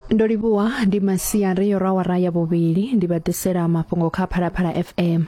ndo livhuwa ndi masiari yo rawara ya vhuvhili ndi vha ḓisela mafhungo kha phalaphala fm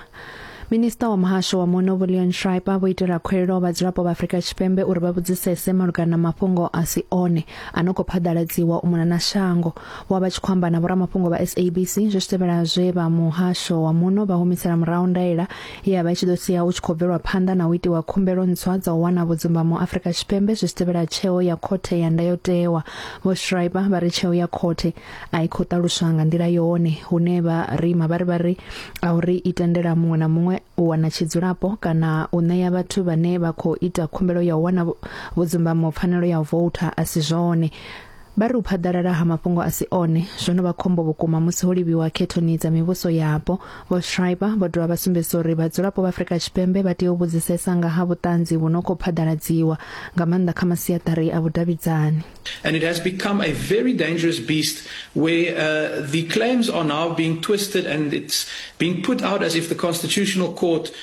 minista wa muhasho wa muno volion shriper vho itela khuelelo vhadzulapo vha afrika tshipembe uri vha vhudzisese malugana na mafhungo a si one a no khou phaḓaladziwa u mona na shango wa vha tshi khou amba na vhoramafhungo vha sabc zwi tevhela zwe vha muhasho wa muno vha humisela murahu ndaela ya vha i tshi ḓo sia hu tshi khou bvelwa phanḓa na u itiwa khumbelo ntswa dza u wana vhudzumbamo Afrika Tshipembe zwi tevhela tsheo ya khothe ya ndayotewa vho Schreiber vha ri tsheo ya khothe a i khou ṱaluswa nga nḓila yone hune vha rima vha ri vha ri a uri i tendela muṅwe na muṅwe u wana tshidzulapo kana u ṋea vhathu vhane vha khou ita khumbelo ya u wana vhudzumbamo pfanelo ya u voutha a si zwone Vha ri u phaḓalala ha mafhungo a si one zwo no vha khombo vhukuma musi ho livhiwa khethoni dza mivhuso yapo. Vho Schreiber vho dovha vha sumbedzisa uri vhadzulapo vha Afrika Tshipembe vha tea u vhudzisesa nga ha vhuṱanzi vhu no khou phaḓaladziwa, nga maanḓa kha masiaṱari a vhudavhidzani. And it has become a very dangerous beast where uh, the claims are now being twisted and it's being put out as if the Constitutional Court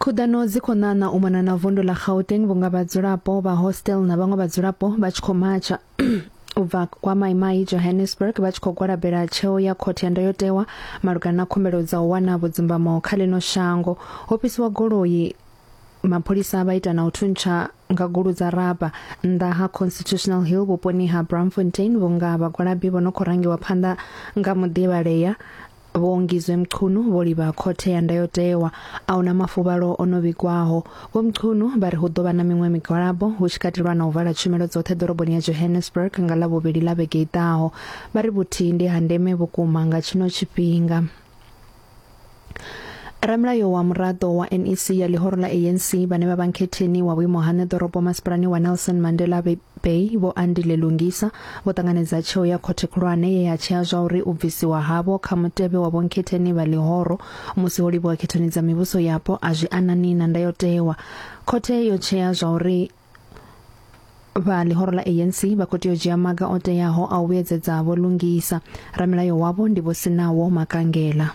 khuḓano dzi khou ṋaṋa u mona na vundu ḽa gauteng vhunga vhadzulapo vha hostel na vhaṅwe vhadzulapo vha tshi khou matsha u bva kwa maimai johannesburg vha tshi khou gwalabela tsheo ya khothe ya ndayotewa malugana na khumbelo dza u wana vhudzimbamo kha ḽino shango ho fhisiwa goloi mapholisa vha ita na u thuntsha nga gulu dza raba nnḓa ha constitutional hill vhuponi ha bramfontein vhunga vhagwalabi vho no khou rangiwa phanḓa nga muḓivhalea Vho Ngizwe Mchunu vho livha khothe ya ndayotewa a huna mafuvhalo o no vhigwaho. Vho Mchunu vha ri hu ḓo vha na miṅwe migwalabo hu tshi katelwa na u vala tshumelo dzoṱhe ḓoroboni ya Johannesburg nga ḽa vhuvhili ḽa vhege i ḓaho. Vha ri vhuthihi ndi ha ndeme vhukuma nga tshino tshifhinga. Ramulayo wa muraḓo wa NEC ya ḽihoro ḽa ANC vhane vha vha nkhetheni wa vhuimo ha ṋeḓorobo masipalani wa Nelson Mandela Bay vho Andile Lungisa vho ṱanganedza tsheo ya khothe khulwane ye ya tshea zwa uri u bvisiwa havho kha mutevhe wa vhonkhetheni vha ḽihoro musi ho livhuwa khethoni dza mivhuso yapo a zwi anani na ndayotewa. Khothe yo tshea zwa uri vha ḽihoro ḽa ANC vha khou tea u dzhia maga o teaho a u vhuyedzedza vho Lungisa. Ramilayo wavho ndi Vho Sinawo Makangela.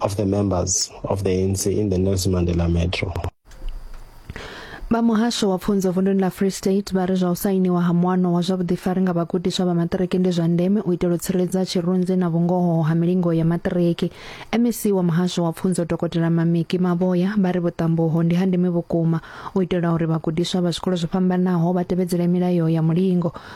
of the members of the ANC in the Nelson Mandela Metro. vha muhasho wa pfunzo vunduni ḽa free state vha ri zwa u sainiwa ha muano wa zwa vhuḓifari nga vhagudiswa vha maṱiriki ndi zwa ndeme u itela u tsireledza tshirunzi na vhungoho ha milingo ya maṱiriki mec wa muhasho wa pfunzo dokotela mamiki mavhoya vha ri vhuṱambuho ndi ha ndeme vhukuma u itela uri vhagudiswa vha zwikolo zwo fhambanaho vha tevhedzele milayo ya mulingo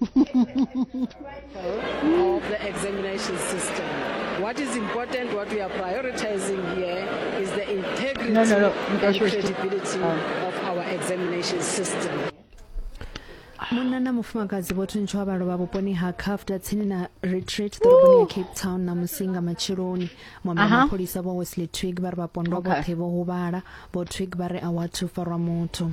of the examination system. What is important, what we are prioritizing here is the integrity no, no, no. and credibility oh. of our examination system. munna na mufumakadzi vho thuntshiwa vha lovha vhuponi ha cafta tsini na retreat ḓoroboni ya cape town na musi nga matsheloni mwamba mapholisa vho wesley twig vha ri vhapondwa vhoṱhe vho huvhala vho twig vha ri a wathu farwa muthu